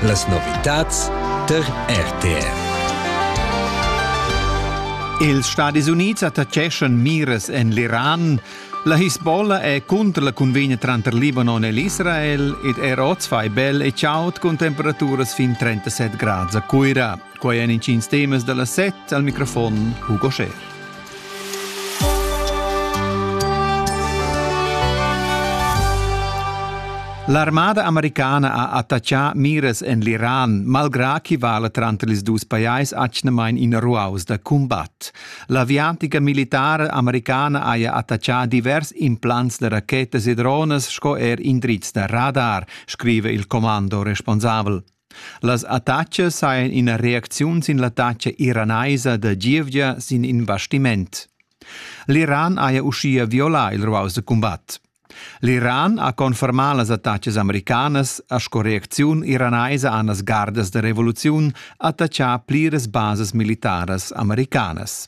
Las novitads tar RTR. Ils Stadis Unids attaccheschan miras en l'Iran. La Hisbollah è cunter la cunvegna tranter Libanon e l'Israel ed er oz fai bel e chaud cun temperaturas fin 37 grads a Cuira. Quai èn intgins temas da la set al microfon Hugo Scher. L'armada americana ha attaccà mires en l'Iran, malgrà chi vala tranter ils dus pajais atgnamain ina ruaus da cumbat. L'aviatica militara americana haja attaccà divers implants da rachetas e drones sco er indrizs da radar, scrive il commando responsabel. Las attachas hajan ina reacziun sin l'attacca iranaisa da gievgia sin in bastiment. L'Iran haja uschia violà il ruaus da cumbat. L'Iran ha confermà las attacas americanas e sco reacziun iranaisa han las gardas da revoluziun attaccà pliras basas militaras americanas.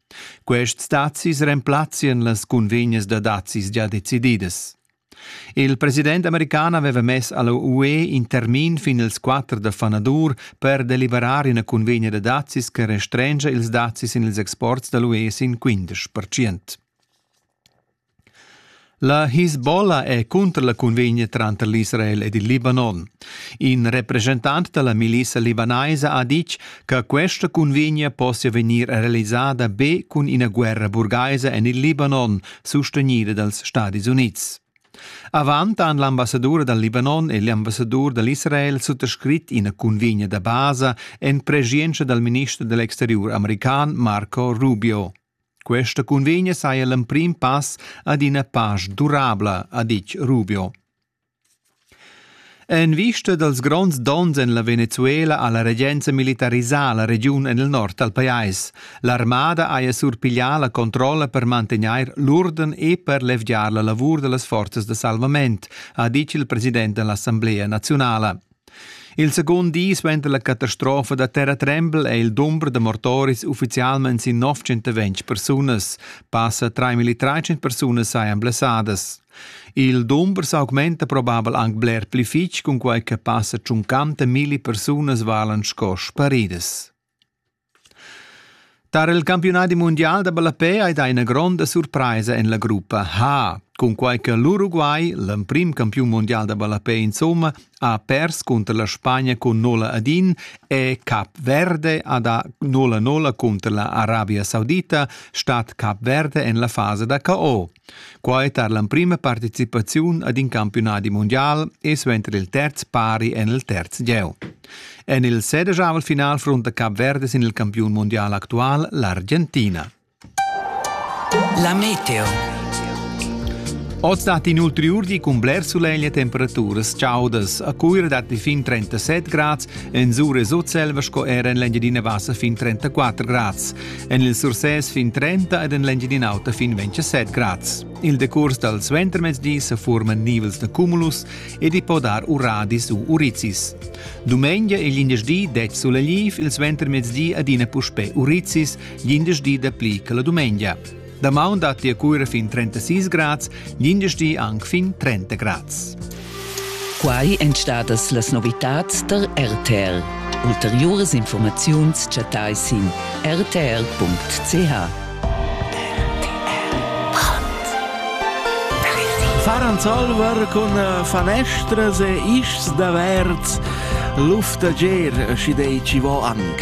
Quests dazis remplazzien las cunvegnas da dazis gia decididas. Il president american aveva mess alla UE in termin fin ils 4 da fanadur per deliberar ina cunvegna da dazis che restrengia ils dazis in ils exports dall'UE sin 15%. La Hisbollah è cunter la cunvegna tranter l'Israel ed il Libanon. In represchentant da la milissa libanaisa ha ditg che questa cunvegna possia vegnir realisada be cun ina guerra burgaisa en il Libanon, sustegnida dals Stadis Unids. Avant han l'ambassadur dal Libanon e l'ambassadur dal Israel suttascrit ina cunvegna da basa en preschientscha dal minister dell'exteriur american Marco Rubio. Questa cunvegna saja l'emprim pass ad ina pasch durabla, ha ditg Rubio. En vista dals gronds donns en la Venezuela ha la regenza militarisà la regiun en il nord dal pajais. L'armada haja surpiglià la controlla per mantegnair l'urden e per levgiar la lavur da las forzas da salvament, ha ditg il president dell'Assemblea naziunala. Il secund di suenter la catastrofa da terratrembel è il dumber da mortoris uffizialmain sin 920 persunas. Passa 3.300 persunas sajan blessadas. Il dumber s'augmenta probabel anc bler pli fitg, cunquai che passa tschuncanta milli persunas valan sco sparidas. Tar il campiunadi mundial da ballapè ei dat ina gronda surpraisa en la gruppa Ha, cunquai che l'Uruguay, l'emprim campiun mundial da ballapè insomma, ha pers cunter la Spagna cun 0 ad 1 e Cap Verde ha da 0-0 cunter la Arabia Saudita, stat Cap Verde en la fasa da KO. Quai tar l'emprima participaziun ad in campiunadi mundial e suenter il terz pari en il terz gieu. En il sedegiavel final frunta Cap Verde sin il campiun mondial actual l'Argentina. La meteo. Oz dat inoltre urdi cun bler sulegl e temperaturas chaudas. A Cuira datti fin 37 grads, en Zure e Sutselva sco era en l'Engiadina Vassa fin 34 grads. En il Sursès fin 30 ed en l'Engiadin'Auta fin 27 grads. Il decurs dal suentermezdi sa forman nivels da cumulus ed i po dar uradis u urizis. Dumengia e glindesdi det sulegliv, il suentermezdi adina puspè urizis, glindesdi dapli che la dumengia. Damaun dat la cura fin 36 grads, glindesdi anc fin 30 grads. Quai èn stadas las novitads tar RTL. Ulteriuras informaziuns chattai sin rtl.ch. Faran Zolwer cun eh, fanestras e ischs da verz, luftager, schi dei ci vo anc.